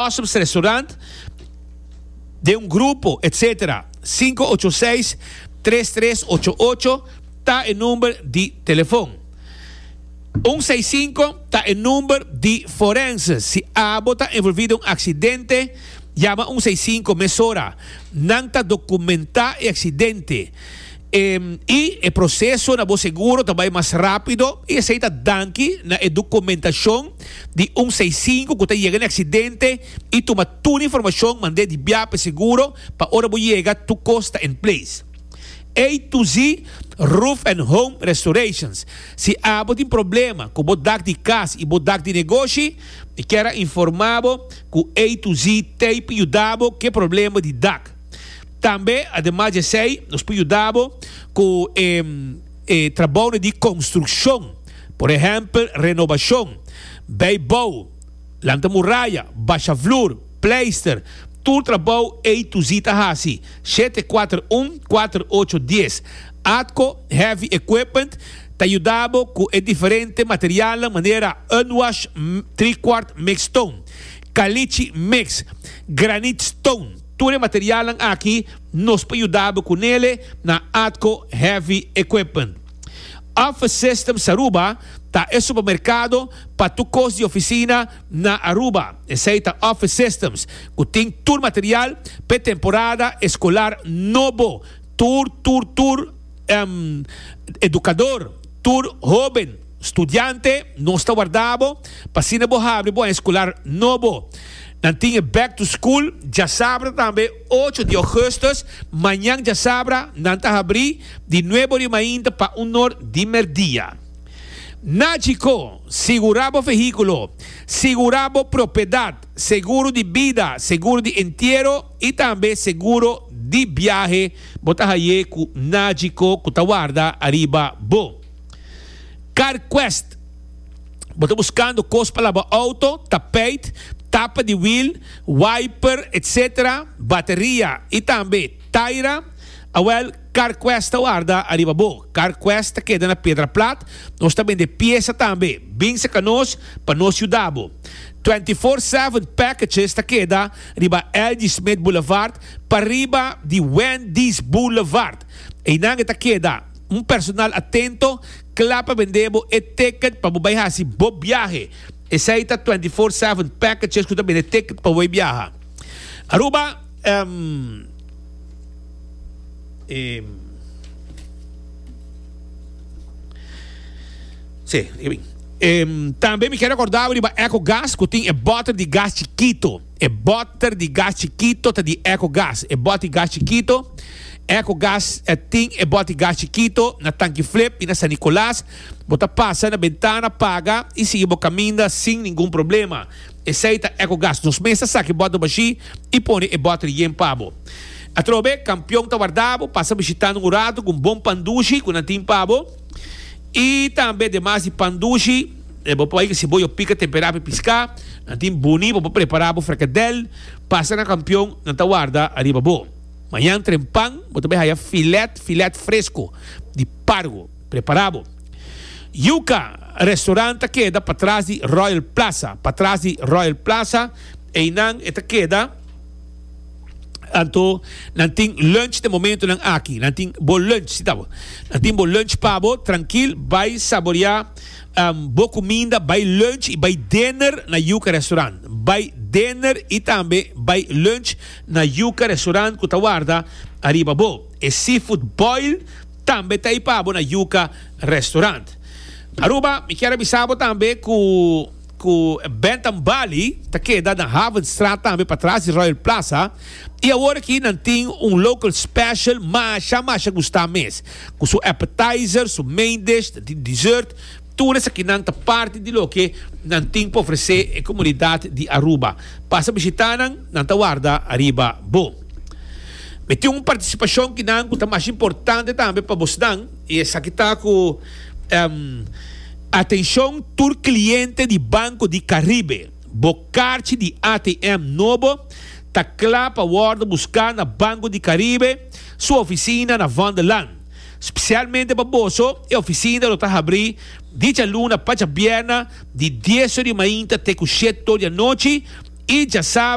Customs Restaurant, den un grupo, etc. Sinku ocho seis, tres tres ocho ocho ta e number di telefon. Un seis sinku ta e number di forense. Si abo ta envolvi den un aksidente, yama un seis sinku mesora. Nan ta dokumentá e aksidente. I e proseso na bo seguro ta bai mas rápido i esei ta danki na e dokumentashon di un seisinku ku ta yega na e aksidente i tuma tur e informashon mand'é di bia pa e seguro pa ora bo yega tur kos ta en ples. A to Z Roof and Home Restorations Si abo tin problema ku bo dak di kas i bo dak di negoshi, mi kier a informá bo ku A to Z Tape yuda bo ku e problema di dak. Tambe ademas di esei nos por yuda bo cu e trabounan di construccion, por ehempel renobacion, bay bou, lanta muraya, basha vloer, pleister, tur trabou ey tu zi ta haci, shete kuater un kuater ocho dies. Atco Heavy Equipment ta yuda bo cu e diferente materialnan manera Unwash, Trikwart Mix Stone, Caliche Mix, Granite Stone, Tur e materialnan aki nos por yuda bo cu nele na Atco Heavy Equipment. Office Systems Aruba ta e supermercado pa tur cos di oficina na Aruba. Esey ta Office Systems cu tin tur material p'e temporada escolar nobo. Tur, tur, tur educador, tur hoben. Studiante, nos ta warda bo pa asina bo habri bo aña escolar nobo. Nan tin e Back to School djasabra tambe ocho di augustus. Mañan djasabra nan ta habri di nuebo di mainta pa un or di merdia. Na Chicó, sigura bo vehiculo, sigura bo propiedad, seguro di bida, seguro di entiero y tambe seguro di biahe bo ta haye cu Na Chicó cu ta warda ariba bo. Car quest, Bo ta buscando cos pa laba auto, tapijt, tapa di wiel, wiper, etc. Bateria y tambe taira. Awel, Car quest ta warda ariba bo. Car quest ta keda na Pedra Plat. Nos ta bende piesa tambe. Bin seca nos pa nos yuda bo. Twenty Four Seven Packages ta keda riba Elgie Smith Boulevard pariba di Wendy's Boulevard. Einan e ta keda. Un personal atento kla pa bend'é bo e ticket pa bo bai hasi bo biahe. Esei ta twenty four seven packages ku ta bende ticket pa bo bai biaha. Aruba tambe mi ke rekordá bo riba Ecogas ku tin e bòter di gas chikito. E bòter di gas chikito ta di Ecogas. E bòt di gas chikito, Ecogas ta tin e bòt di gas chikito na Tankiflip i na San Nicolas. Bo ta pasa na bentana, paga i sigui bo kaminda sin ningun problema. Esei ta Ecogas. Nos mes ta saka e bòt dopashí i pone e bòter yen pa bo. Atrobe, Kampion ta warda bo. Pasa bishitando un ratu ku un bon pan dushi ku nan tin pa bo. Y tambe demas di pan dushi, e bo por bai cu cebolla o pica tempera pa e pisca. Nan tin boni pa bo prepara bo fricadel. Pasa na campion, nan ta warda ariba bo. Mañan trempan bo ta bai haya filet, filet fresco di pargo prepara bo. Yuca, restaurant ta keda patras di Royal Plaza, patras di Royal Plaza, einan e ta keda. Anto nan tin lunch den momentonan aki. Nan tin bo lunch, si ta bo. Nan tin bo lunch pa bo, trankil, bai saboreá um bo kuminda, bai lunch i bai dinner na Yuka Restaurant. Bai dinner i tambe bai lunch na Yuka Restaurant ku ta warda ariba bo. E seafood boil tambe ta ei pa bo na Yuka Restaurant. Aruba, mi kier a bisa bo tambe ku. ku Bentham Bali ta keda na Havenstraat tambe pa tras di Royal Plaza i awor aki nan tin un local special masha masha gusta mes ku su appetizer su main dish ta tin dessert tur esaki nan ta parti di loke nan tin pa ofrese e komunidat di Aruba pasa bishita nan nan ta warda ariba bo mi tin un partisipashon kinan ku ta masha importante tambe pa bosnan. I esaki ta ku atenshon tur kliente di Banco di Caribe. Bo karchi di ATM nobo ta kla pa wòrdu buská na Banco di Caribe su ofisina na Van der Laan. Spesialmente pa boso e ofisina lo ta habrí di djaluna pa djabièrna di dieso di mainta te ku shetodia nochi i djasa.